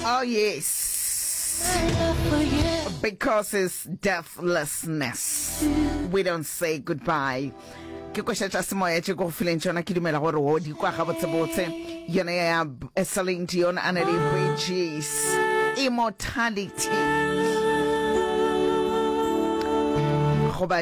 Oh, yes. Because it's deathlessness, we don't say goodbye. ke košetša semoya tše ko go fileng tšona ke dumela gore o di kwa gabotsebotse yone ya celine dion a na le bridges immortality goba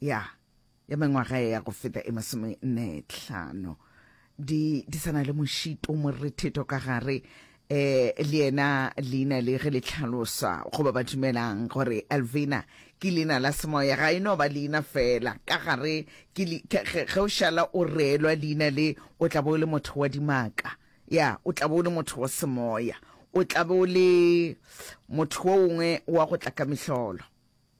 Ya, ya mengwaga ya go feta e masome nne tlhano. Di, di sa na le mošito moretheto ka gare. E, le yena leina le ge le tlhalosa goba ba dumelang gore Elvina ke leina la semoya ga e no ba leina fela ka gare ke ge o šala o reelwa leina le o tla bo o le motho wa dimaka ya o tla bo o le motho wa semoya o tla bo o le motho o ongwe wa go tla ka mehlolo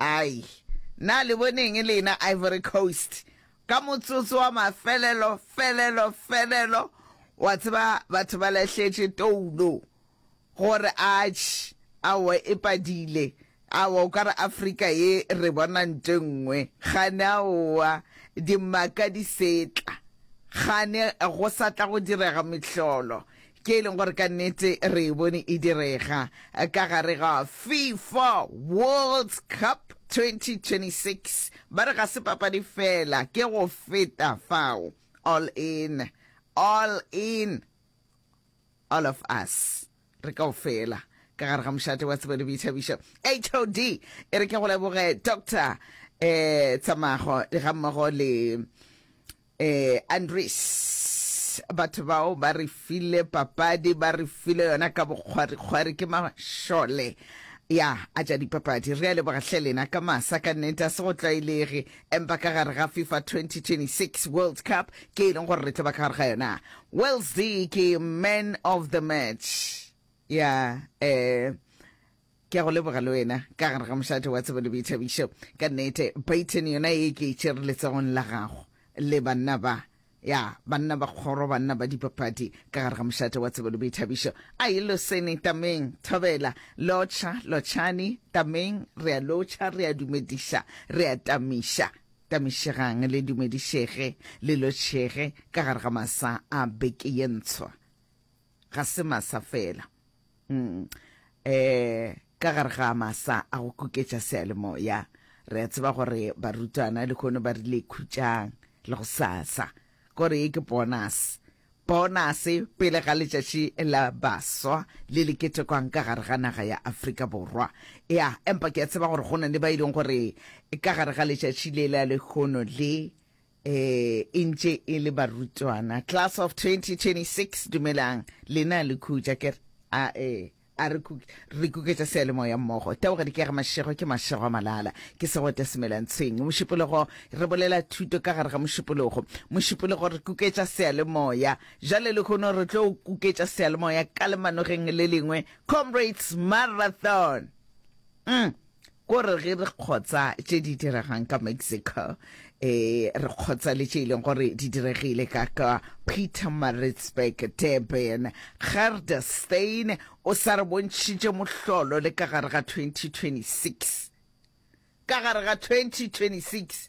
Ai, na le bone eng lena, Ivory Coast? Ka motsotso wa mafelelo, felelo, felelo, wa tseba, batho ba lahletše toulo, gore, Atš, aowa, e padile. Aowa, o ka re Afrika ye re bona nto e nngwe. Kgane, aowa, dimaka di setla. Kgane go sa tla go direga mehlolo. ke e leng gore ka nnete re e bone e direga ka gare ga fifa world cup 2026 ba re ga se papadi fela ke go feta fao all in all in all of us re kao fela ka gare ga mošate wa tsebo le boithabišo hod e re ke go leboge doctor um tsamago ga mmogo le Ee, Andries, batho bao ba re file papadi, ba re file yona ka bokgwarikgwari, ke mašole ya a tša dipapadi. Re a leboga hle lena ka masa, ka nnete a se go tlwaelege, empa ka gare ga FIFA 2026 World Cup ke e leng gore re tlo ba ka gare ga yona. Wales ke man of the match ya eh Ke a go leboga le wena. Ka gare ga mošate wa tsebo le boithabišo. Ka nnete, paithene yona e ke e tšere letsogong la gago. Le banna ba. Ya, banna ba kgoro, banna ba dipapadi, ka gare ga mošate wa tsebo le boithabišo. Ai, losene, tameng, thobela. Lotšha, lotšhani, tameng, re a lotšha, re a dumediša, re a tamiša. Tamišegang, le dumedišege, le lotšhege, ka gare ga masa a beke ye ntshwa. ga se masa fela mm. eh ka gare ga masa a go kuketša sealemoya re a tseba gore barutwana le kgono ba rile khutšang le go sasa gore e ke bonus bonus pele ga letšatši la baswa le le ketekwang ka gare ga naga ya aforika borwa ya empa ke a tseba gore go na le ba e leng gore ka gare ga letšatši le la lekgono le e e ntše e le barutwana class of 2026 dumelang lena le khutša ke re a e a re kuke re kuketša sealemoya mmogo teboga dikega mašego ke mašego a malala ke segote semelantshweng mošupologo re bolela thuto ka gare ga mošupologo mošupologo re kuketša sealemoya jale lehono re tlo kuketša sealemoya ka lemanogeng le lengwe comrades marathon mm. Ko re ge re kgotsa tše di diregang ka Mexico, e, re kgotsa le tše e leng gore di diregile ka ka Pietermaritzburg, Durban. Gerdersteen o sa re bontšhitše mohlolo le ka gare ga 2026. Ka gare ga 2026!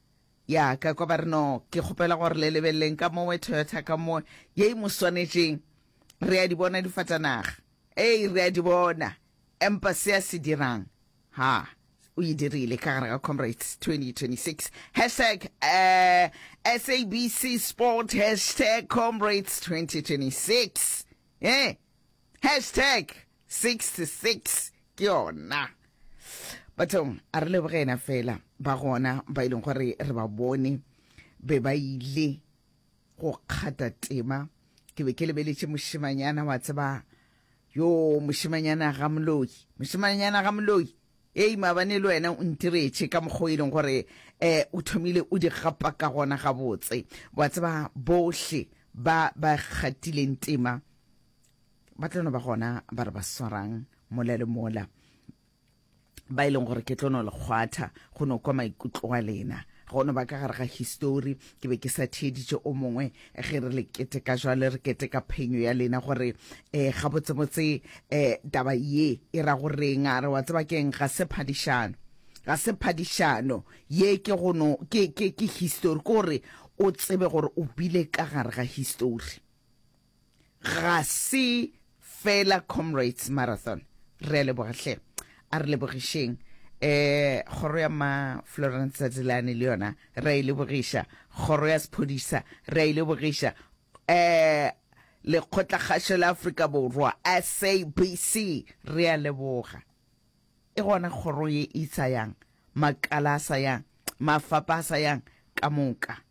Ya ka kwa ba re no, ke kgopela gore le lebeleleng ka mowe Toyota ka mo ye e mo swanetšeng. Re a di bona difatanaga. Ee, re a di bona. Empa se a se dirang, ha, o e dirile ka gare ga Comrades 2026. Hashtag uh, SABC Sport, hashtag Comrades 2026. Eh? Hashtag 66 ke yona. Bathong, a re leboge ena fela ba gona ba e leng gore re ba bone be ba ile go kgata tema. Ke be ke lebeletše mošemanyana wa tseba yo mošemanyana ga moloi mošemanyana ga moloi ei maabane le wena o ntiretše ka mokgwa e leng gore um o thomile o di gapa ka gona gabotse wa tseba bohle ba ba kgatileng tema ba tlono ba gona ba re ba swarang mola le mola ba e leng gore ke tlono lekgwatha go no kwa maikutlo a lena go no ba ka gare ga histori ke be ke sa theeditše o mongwe ge re le keteka jwale re keteka phenyo ya lena gore um eh, gabotsebotse um eh, taba ye e ra go reng a re wa tseba keng ga se phadišano ga se phadišano ye ke gono ke ke ke history ke gore o tsebe gore o bile ka gare ga history Ga se fela Comrades Marathon. Re a leboga hle. A re lebogišeng. Eh, kgoro ya ma Florence Tsatseleane le yona re a e lebogiša. Kgoro ya sephodisa re a e lebogiša. Eh, lekgotlakgašo la Afrika Borwa, SABC, re a leboga. E gona kgoro ye e sa yang, makala a sa yang, mafapa a sa yang ka moka.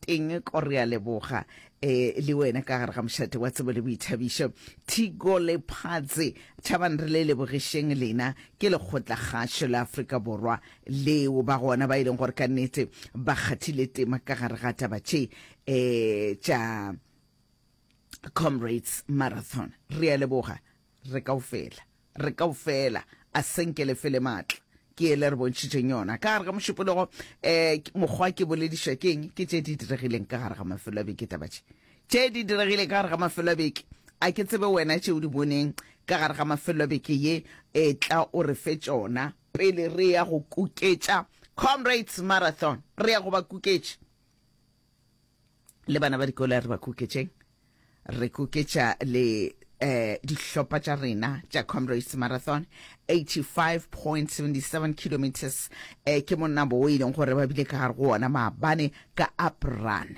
teng ko re a leboga e le wena ka gare ga mošate wa tsebo le boithabišo thigo le phatse tšhabang re le lebogešeng lena ke lekgotla kgašo la afrika borwa leo ba gona ba e leng gore ka nnete ba kgathile tema ka gare ga taba tše um tša comrades marathon re a leboga re kao fela re kaofela a senke le fele maatla ke ele re bontšhitšeng yona ka gare ga mošupologo um mokgwa ke boledišwa ke eng ke tše di diregileng ka gare ga mafelo a beke taba tše tše di diregileng ka gare ga mafelo a beke a ke tsebe wena tše o di boneng ka gare ga mafelo a beke ye e tla o re fe tšona pele re ya go kuketša comrades marathon re ya go ba kuketša le bana ba dikolo re ba kuketšeng re kuketša le eh dihlopha tša rena tša comrades marathon 85.77 kilometers eh ke monabo o e leng gore ba bile ka gare go ona maabane ka apran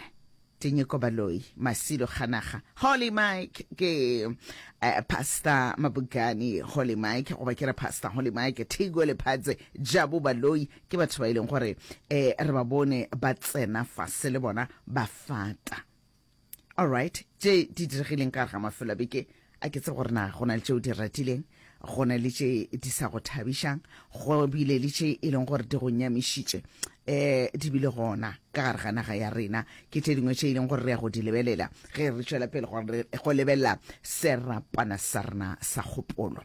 Tinyiko Baloi, Masilo Khanaga, Holy Mike ke uh, Pastor Mabugani, Holy Mike goba ke re Pastor Holy Mike, Thigwe Lephadze, Jabu Baloi, Ke batho ba e leng gore um re ba bone ba tsena fase le bona ba fata. Alright, tše di diregileng ka gare ga mafelo a beke a ke tse gore na go na le tšeo di ratileng go na le tše di sa go thabišang go bile le tše e leng gore di go nyamišitše um di bile gona ka gare ga naga ya rena ke tše dingwe tše e leng gore re ya go di lebelela ge re tšwela pele go lebelela serapana sa rena sa kgopolo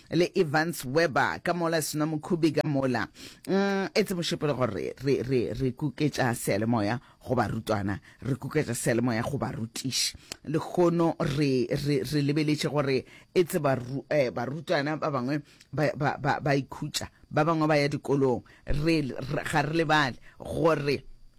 le Evans Weber ka mola Sna Mokhubi ka mola. Mm, etse mošepelo gore re, re, re kuketša sealemoya go barutwana, re kuketša sealemoya go barutiši. Lehono re, re, re lebeletše gore etse baru, eh, barutwana ba bangwe ba, ba, ba, ba ikhutša, ba bangwe ba ya dikolong. Re, re, ga re lebale gore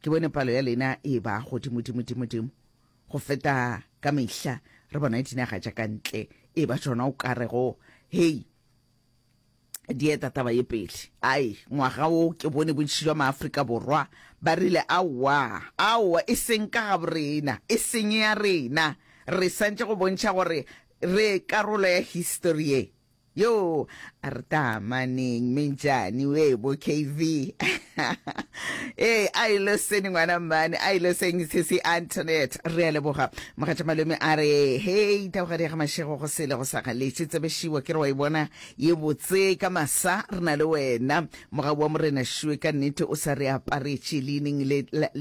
Ke bone palo ya lena e e-ba godimodimodimodimo go feta ka mehla, re bona dinaga tša ka ntle e-ba tšona o ka rego, Hei, di eta taba ye pele. Ai, ngwaga wo ke bone bontši jwa Maafrika Borwa ba rile, Aowa, aowa, e seng ka gaborena, e seng ya rena. Re santše go bontšha gore re karolo ya histori ye. Yoo a re taamaneng mejane we bo KV ee a ilo sene ngwana mmane a ilo seng sisi Antoinette re a leboga mogatša malome a re hei taogadi ya ga mašego go sele go sa galetše tsebešhiwa ke re wa e bona ye botse ka masa re na le wena mogau wa morena šue ka nnete o sa re aparetše leineng le